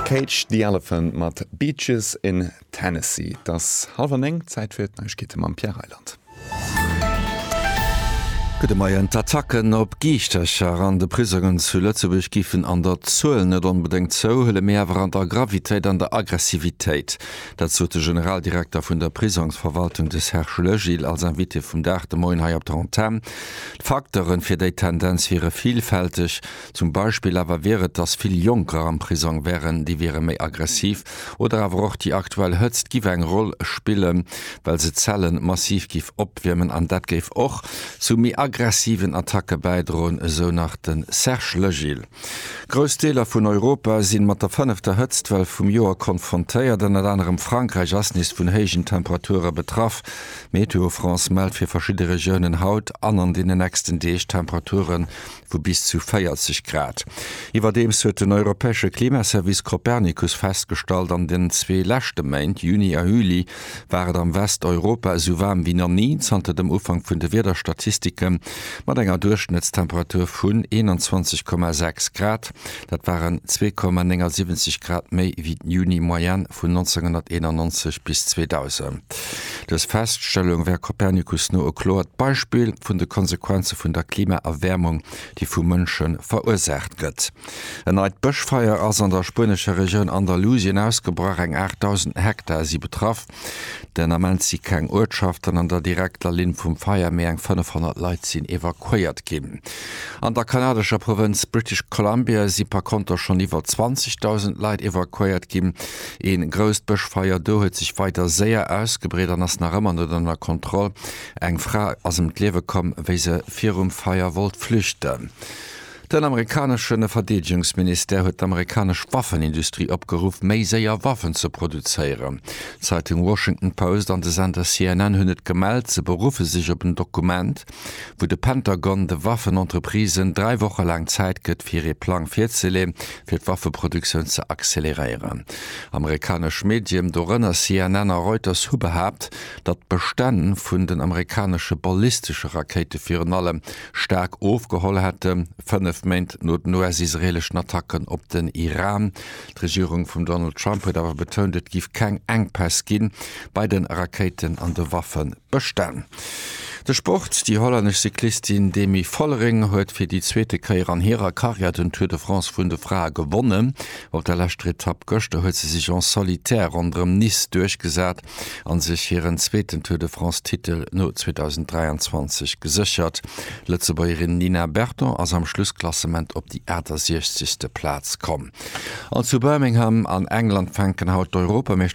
Cage the Elephant mat Beaches in Tennessee. Et ass hallef an néng, Zäit fir d'Neiegkeete mam Pierre Reyland. Gudde Moien. D'Attacken op Giichtercher an de Prisongen zu Lëtzebuerg géifen an der Zuel net onbedéngt zouhuelen, mee awer an der Gravitéit an der Aggressivitéit. Dat sot de Generaldirekter vun der Prisongsverwaltung, de Serge Legil, als Invité vum Dag de Moien hei op der Antenn. D'Facteuren fir déi Tendenz wiere villfälteg. Zum Beispill awer wier et, datt vill Jonker am Prisong wären, déi wiere méi aggressiv. Oder awer och déi aktuell Hëtzt giff eng Roll spillen, well se d'Zelle massiv giff opwiermen an dat géif och zu méi aggressiven Attacke bäidroen, esou nach de Serge Legil. Grouss Deeler vun Europa si mat der fënnefter Hëtztwell vum Joer konfrontéiert. Ënnert anerem Frankräich ass nees vun héijen Temperature betraff. Météo France mellt fir verschidde Regiounen haut an an deenen nächsten Deeg Temperature vu bis zu 40 Grad. Iwwerdeems huet den europäesche Klimaservice Copernicus festgestallt, an den zwee leschte Méint, Juni a Juli, war et am Westeuropa esou waarm wéi nach ni zanter dem Ufank vun de Wiederstatistike mat enger Duerchschnëttstemperatur vun 21,6 Grad. Dat waren 2,79 Grad méi ewéi d'Juni-Moyenne vun 1991 bis 2000. Dës Feststellung wär Copernicus no e kloert Beispill vun de Konsequenze vun der Klimaerwäermung, déi vu Mënsche verursaacht gëtt. En neit Bëschfeier ass an der spuenescher Regioun Andalusien ausgebrach, eng 8.000 Hektar si betraff. Den Ament si keng Uertschaften an der direkter Linn vum Feier, méi eng 500 Leit sinn evakuéiert ginn. An der kanadescher Provënz British Columbia si par konter schonn iwwer 20.000 Leit evakuéiert ginn. Ee grousst Bëschfeier do huet sech weider séier ausgebreet an ass nach ëmmer net ënner Kontroll. Eng Fra ass ëm d'Liewe komm, wéi se virum Feier wollt flüchten. Den amerikanesche Verdeedegungsministère huet d'amerikanesch Waffenindustrie opgeruff, méi séier Waffen ze produzéieren. D'Zeitung Washington Post an de Sender CNN hunn et gemellt, se beruffe sech op en Dokument, wou de Pentagon de Waffenentreprisen dräi Woche laang Zäit gëtt, fir ee Plang virzeleen, fir d'Waffeproduktioun ze acceleréieren. Amerikanesch Medien, dorënner CNN a Reuters, hu behaapt, datt d'Bestänn vun den amerikanesche ballistesche Rakéite virun allem staark ofgeholl hätten, fënnef Méint no den US-israeeleschen Attacken op den Iran. D'Regierung vum Donald Trump huet awer betount, et géif keng Enkpäss gi bei de Rakéiten an de Waffebestänn. De Sport, Déi hollännesch Cyclistin Demi Vollering huet fir déi zweete Kéier an hirer Karriär den Tour de France vun de Frae gewonnen. Op der leschter Etapp gëschter huet se sech en solitaire ronderëm Nice duerchgesat. a sech hiren zweeten Tour de France-Titel no 2023 geséchert. D'Lëtzebuergerin Nina Berton ass am Schlussklassement op déi 68. Plaz komm. An zu Birmingham an England fänken haut d'Europameeschterschaften